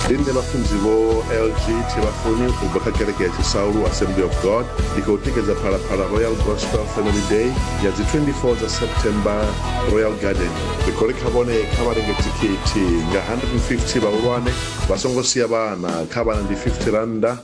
ndi nṋe vhafunzi vho lg thivhafuni u bva kha kereke ya tshisaulu assembly of god ndi khou tikedza phalaphala royal gospel family day ya dzi 24 dza september royal garden ri khou ri kha vhone kha vha renge thikhithi nga 150 vhahulwane vha songo sia vhana kha vhana ndi 50 rannda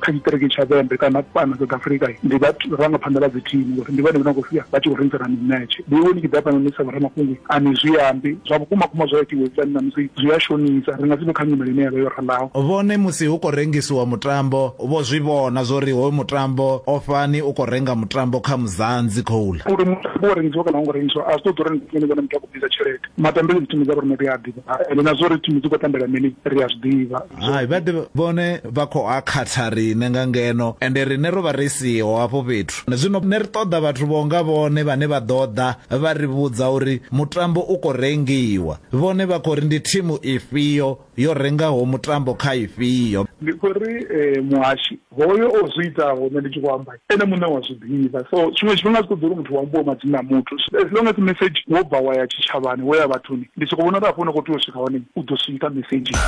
kha tshiṱiriki tsha vhembe kana fhano south africa ndi vharangaphanḓa vha dzi thimu ngori ndi vhone vhona khou sia vha tshi khou rengisana mimetshe ndi iwe ni tshi ḓa fhano ni sa vhoramafhungo a ni zwi ambi zwa vhukuma kuma zwa itiwe fani na musi zwi a shonisa ri nga si vhe kha nyimele ine ya vha yo ralaho vhone musi hu khou rengisiwa mutambo vho zwi vhona zwo ri hoyu mutambo o fani u khou renga mutambo kha muzanzi khoula uri mutambo wa rengisiwa kana u ngo rengisiwa a zwi ṱoḓi uri ni vhone muthu a khou bvisa tshelede matambele dzi thimu dza vho rine ri a ḓivha ende na zwo ri thimu dzi khou tambela mini ri a zwi ḓivha hai vha ḓi vhone vha khou a khatha riṋe nga ngeno ende riṋe ro vha ri siho hafho fhethu zwino ne ri ṱoḓa vhathu vho nga vhone vhane vha ḓo ḓa vha ri vhudza uri mutambo u khou rengiwa vhone vha khou ri ndi thimu ifhio yo rengaho mutambo kha ifhio ndi khou ri eh, muhashi Hoyo o zwi itaho nṋe ndi tshi khou amba ene muṋe wa zwi ḓivha so tshiṅwe tshifhinga a zwi ṱoḓi uri muthu hu ambiwe madzina a muthu as long as message wo bva wa ya tshitshavhani wo ya vhathuni ndi soko vhona uri hafho hune wa khou tea u swika hone u ḓo swika mesedzhini.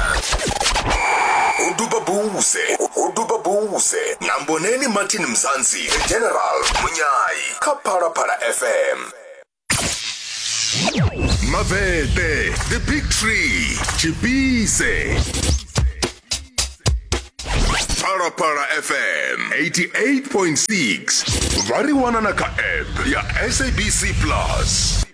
Ho duba Bouse, ho duba Bouse na Mboneni Martin Mzansi, The General, Munyai kha Phalaphala FM. mavhete the big tree tshipise phalaphala fm 88.6 vha ri wana na kha app ya sabc plus